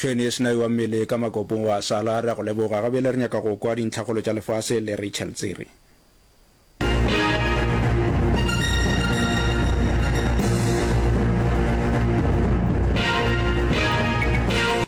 Tšhweni e sena ewa mmele ka makopong wa sala. Re a go leboga. Gabele re nyaka go kwa dintlhakgolo tša lefase le Rachel Tsiri.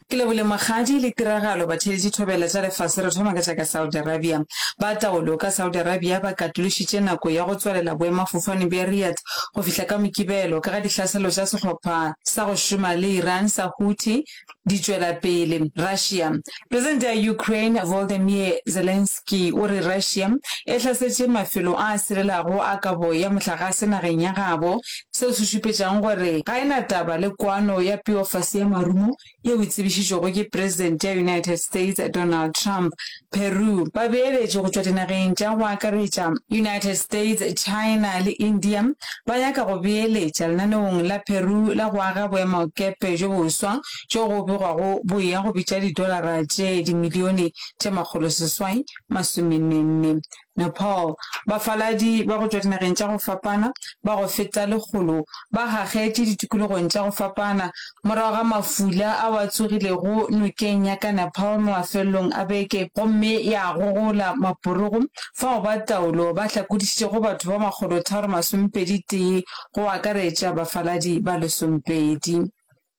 Ke lebole magadi le tiragalo batheletši thobela tša lefase re thoma ka tša ka Saudi Arabia. Ba taolo ka Saudi Arabia ba katološitše nako ya go tswalela boemafofane bja Riyadh go fihla ka Mokibelo ka ga dihlaselo tša sehlopha sa go šoma le Iran sa Houthi di tšwela pele. Russia. Presidente ya Ukraine Volodymyr Zelensky o re Russia e hlasetše mafelo a a sirelago a kabo ya mohlagase nageng ya gabo, seo se šupetšago gore ga e na taba le kwano ya peofase ya marumo yeo e tsebišitšwego ke Presidente ya United States Donald Trump, Peru, babeeletši go tšwa dinageng tša go akaretša United States, China le India ba nyaka go beeletša lenaneong la Peru la go aga boemakepe bjo boswa bjo go begwago bo eya go bitša didolara tše dimilione tše makgoloseswai masomennenne Nepal, bafaladi ba go tšwa dinageng tša go fapana ba go feta lekgolo ba gagetše ditikologong tša go fapana morago ga mafula ao a tsogilego nokeng ya ka Nepal mafelelong a beke gomme ya gogola maporogo fao ba taolo ba hlakodišitšego batho ba makgolotharo masomepedi-tee go akaretša bafaladi ba lesomepedi.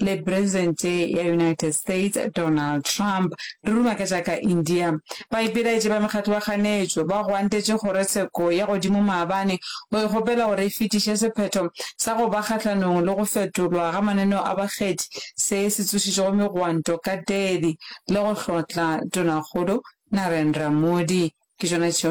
le Presente ya United States Donald Trump, di ruma ka tša ka India. Baipelaetši ba mekgatlo ba ganetšwe, ba gwantetše kgorotsheko ya godimo maabane go e kgopela gore e fetiše sephetho sa go ba kgahlanong le go fetolwa ga mananeo a bakgethi se se tsošitšego megwanto ka Delhi le go hlotla Tonakgolo Narendra Modi. Ke tšona tšeo